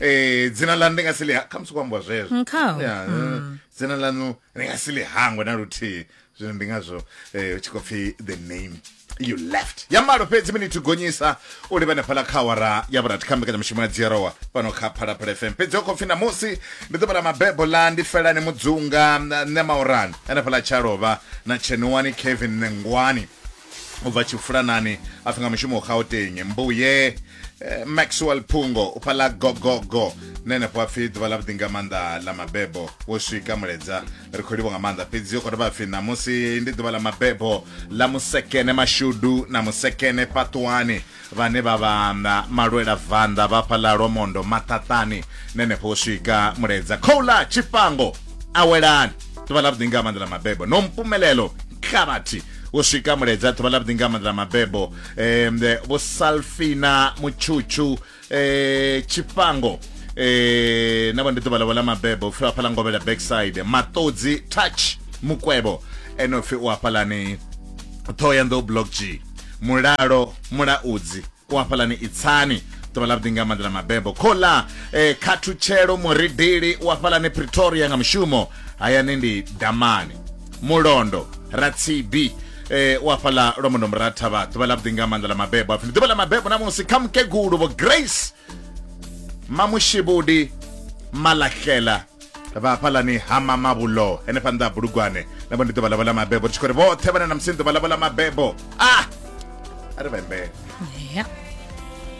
eh dzina ḽa ndi nga si ḽi khamusi ku ambiwa zwezwo Mm, kha. Ya, eh, dzina ḽaṋu ndi nga si ḽi hangwe na luthihi zwino ndi ngazwo eh, hu tshi khou pfi the name you left ya malo fhedzi minithi gonyisa u livhane phala kha awara ya vhurathi kha mbekanyamushumo ya dzierowa fhano kha phalaphala fm fhedzi ho khou pfi namusi ndi ḓuvha ḽa mabebo ḽa ndi felani mudzunga na- nṋe maurani ane phala tsha lovha na tshenuwani kevin nengwani u bva tshifulanani a pfi nga mushumo u gauteng mbuye eh, maxwell phungo u pfa ḽa gogogo na henefho a pfi ḓuvha ḽa vhuḓi nga maanḓa ḽa mabebo wo swika muledza ri khou livho nga maanḓa fhedzi u khou dovha pfi ṋamusi ndi ḓuvha ḽa mabebo ḽa musekene mashudu na musekene paṱuwani Vhane vha vha na malwela vanḓa vha fha ḽa Lwamondo maṱaṱani na henefho u swika Muledza. Khouḽa Tshifhango a welani? Ḓuvha ḽavhuḓi nga maanḓa ḽa mabebo. Nompumelelo Nkhavhathi u swika Muledza. Ḓuvha ḽavhuḓi nga maanḓa ḽa mabebo. Vho Salfina Mutshutshu Tshifhango navho ndi ḓuvha ḽavho ḽa mabebo. Upfhi vha fha ḽa Ngovhela Backside. Maṱodzi Touch Mukwevho ene upfhi u hafhaḽani Ṱhohoyanḓou Block G. mulalo mulaudzi u hafhalani itsani ḓuvha ḽa vhuḓi nga maḓi ḽa mabebo khola eh, khathutshelo muridili u hafhalani pretoria nga mushumo hayani ndi damani mulondo ratsibi eh, u hafhala lwa mundombo ra thavha ḓuvha ḽa vhuḓi nga maanḓa ḽa mabebo apfi ndi ḓuvha ḽa mabebo namusi kha mukegulu vho grace mamushivhudi malahlela vha hafhalani ha mamavhulo henefha nnḓa ha bulugwane na vho ndi ḓuvha ḽavho ḽa mabebo ri tshi khou ri vhoṱhe vhane na musi ḓuvha ḽavho ḽa mabebo a a ri vhembele Yeah.